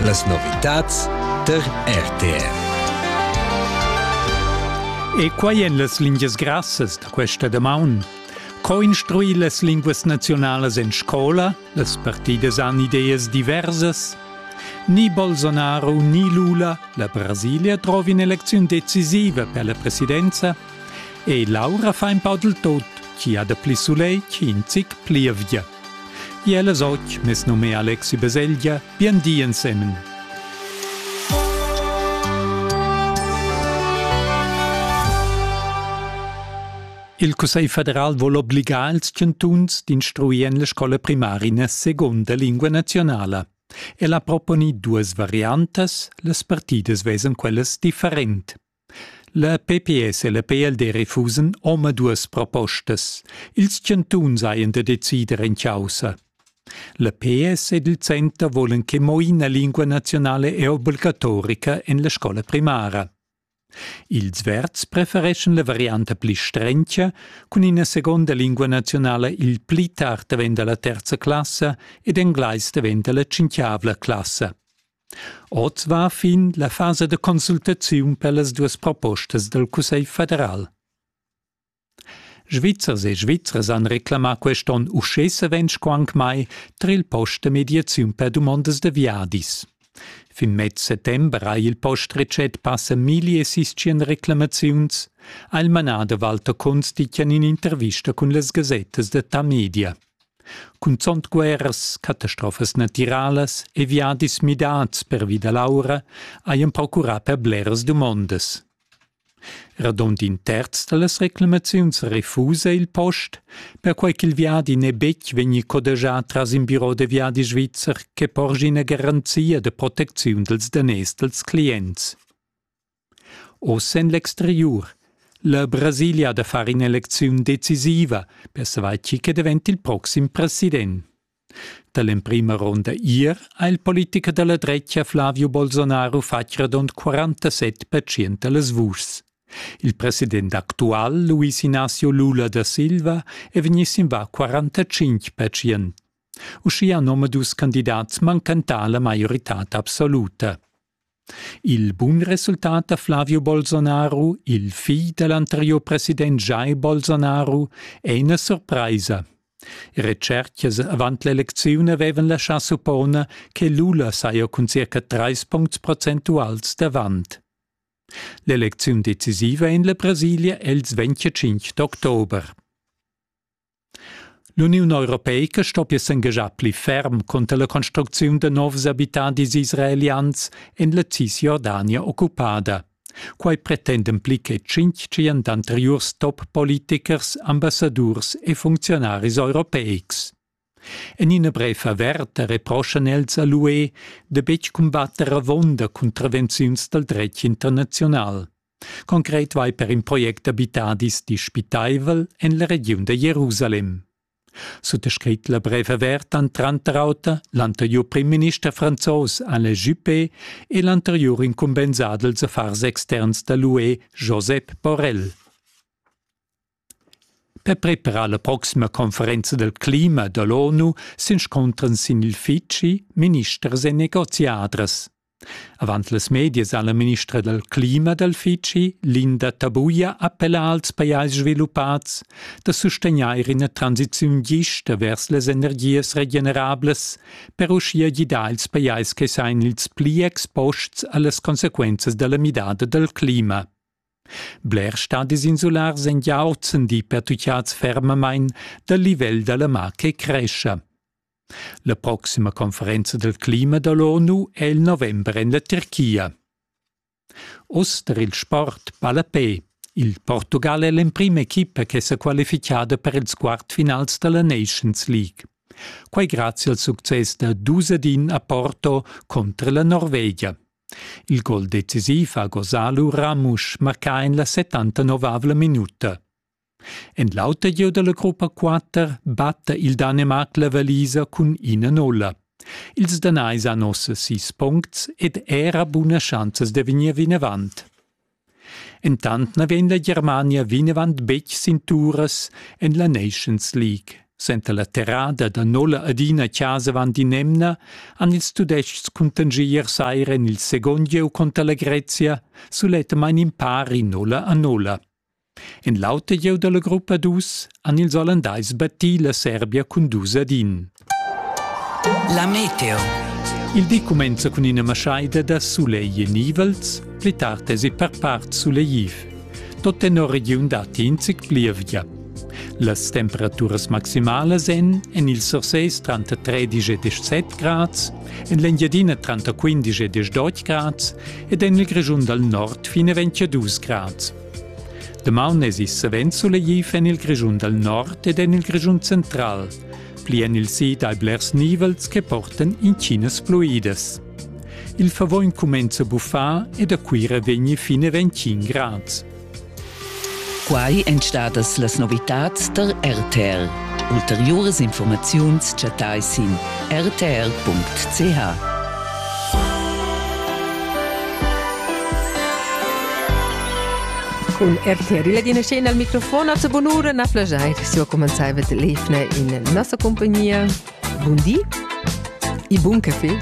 Las novitads tar RTR. E quai en las lingias grassas da questa damaun. Co instruir las linguas nazionalas en scola? Las partidas han ideas diversas. Ni Bolsonaro ni Lula, la Brasilia trova un'elezione decisiva per la presidenza e Laura fa un po' del tot, chi ha da pli soleil, chi in zic pli via. Iel es och mes nom è Alexi Beseglia, bien di ensemen. Il Cussegl federal vuol obligar ils chantuns d'instruir en la scola primaria seconda lingua nazionala. El ha proponi duas variantas, las partidas vesen quellas different. La pps e la PLD refusan omaduas propostas. Ils chantuns hajan da decider en chaussa. La PS ed il center volan che mo ina lingua nazionale è obligatorica en la scola primara. Ils Verds prefereschan la varianta pli strencha cun ina seconda lingua nazionale il pli tard daventa la terza classa ed englais daventa la cinquiavla classa. Oz va fin la fasa da consultaziun per las duas propostas dal Cussegl federal. Svizzers e Svizras han reclamà quest onn uschè savens co anc mai tar il post da mediaziun per dumondas da viadis. Fin mez settember ha il post retschet passa 1600 reclamaziuns, ha il manader Walter Kunz ditg en in'intervista cun las gasettas da Tamedia. Cunzont guerras, catastrofas natiralas e viadis midats pervi da l'aura hajan procurà per bleras dumondas. Radund in terz da las reclamaziuns refusa il post, perquai ch'il viadi n'è betg vegnì codegià tras in biro da viadi svizzer che porgi ina garanzia da protecziun dals daners dals clients. Oz en l'exteriur. La Brasilia da far in'elecziun decisiva per savair chi che davent il proxim president. Da l'emprima ronda ier ha il politicher da la dretga Flavio Bolsonaro fatg radund 47% da las vuschs. Il president actual, Luis Ignacio Lula da Silva, è vegnì sin va 45%. Uschia han omadus candidats manchentà la maioritad absoluta. Il bun resultat da Flavio Bolsonaro, il figl da l'anteriur president Jair Bolsonaro, è ina surpraisa. Retschertgas avant l'elecziun avevan laschà supponer che Lula saja cun circa trais puncts procentuals davant. L'elecziun decisiva en la Brasilia è il 25 d'october. L'Uniun europeica stoppia s'engaschar pli ferm cunter la construcziun da novs abitadis israelians en la Cisjordania occupada. Quai pretenden pli che tschintg tschient anteriurs top-politichers, ambassadurs e funcziunaris europeics. En ina brev averta reproschan els a l'UE da betg cumbatter avunda cuntravenziuns dal dretg internaziunal. Concret vai per in project d'abitadis dispitaivel en la regiun da Jerusalem. Suttascrit la brev avert han tranter auter l'anteriur primminister franzos Alain Juppé e l'anteriur incumbensadels affars externs da l'UE Josep Borrell. Per preparar la proxima conferenza del clima dall'ONU s'inscuntran sin il feci ministers e negoziadras. Avant las medias ha la ministra dal clima dal feci, Linda Tabuia, appellà als pajais sviluppats da sustegnair ina transiziun gista vers las energias regenerablas per uschia gidar ils pajais che sain ils pli exposts a las consequenzas dalla midada dal clima. Blers stadis insulars èn gia ozendi pertutgads fermamain dal livel da la mar che crescha. La proxima conferenza del clima da l'ONU è il november en la Turchia. Oz tar il sport palapè. Il Portugal è l'emprima equipa che s'è qualificada per ils quartfinals da la Nations League. Quai grazie al success da Dusadin a Porto contro la Norvegia. Il gol decisiv ha gosà lura Ramusch marcà en la 79avla minuta. En l'auter gieu da la gruppa 4 batta il Danemarc la valisa cun ina nolla. Ils Danais han ossa sis puncts ed era buna schanzas da vegnir vinavant. Entant na vegn la Germania vinavant betg sin turas en la Nations League. Senza la terrada da nolla adina chasa avant in'emna han ils Tudestgs cuntangier saira en il second gieu conter la Grezia sulettamain in pari nolla a nolla. En l'auter gieu dalla gruppa dus han ils Ollandais battì la Serbia cun dus ad in. La meteo. Il di cumenza cun ina maschaida da sulegl e nivels, pli tard esi per part sulegliv. Tot tenor regiun datti in zic plievgia. Las temperaturas maximalas èn en il Sursés tranter 13 e 17 grads, en l'Engiadina tranter 15 e 18 grads ed en il Grischun dal nord fin a 22 grads. Damaun esi savens sulegliv en il Grischun dal nord ed en il Grischun central, pli en il sid hai blers nivels che portan intginas fluidas. Il favogn cumenza a buffar e da Cuira vegni fin a 25 grads. Quai èn stadas las novitads tar RTL. Ulteriuras informaziuns chattai sin rtr.ch. Cun RTR la dina scena al microfon a bunura na plagiai su comenzai vet lefne in nossa compagnia. Bundi i bun café.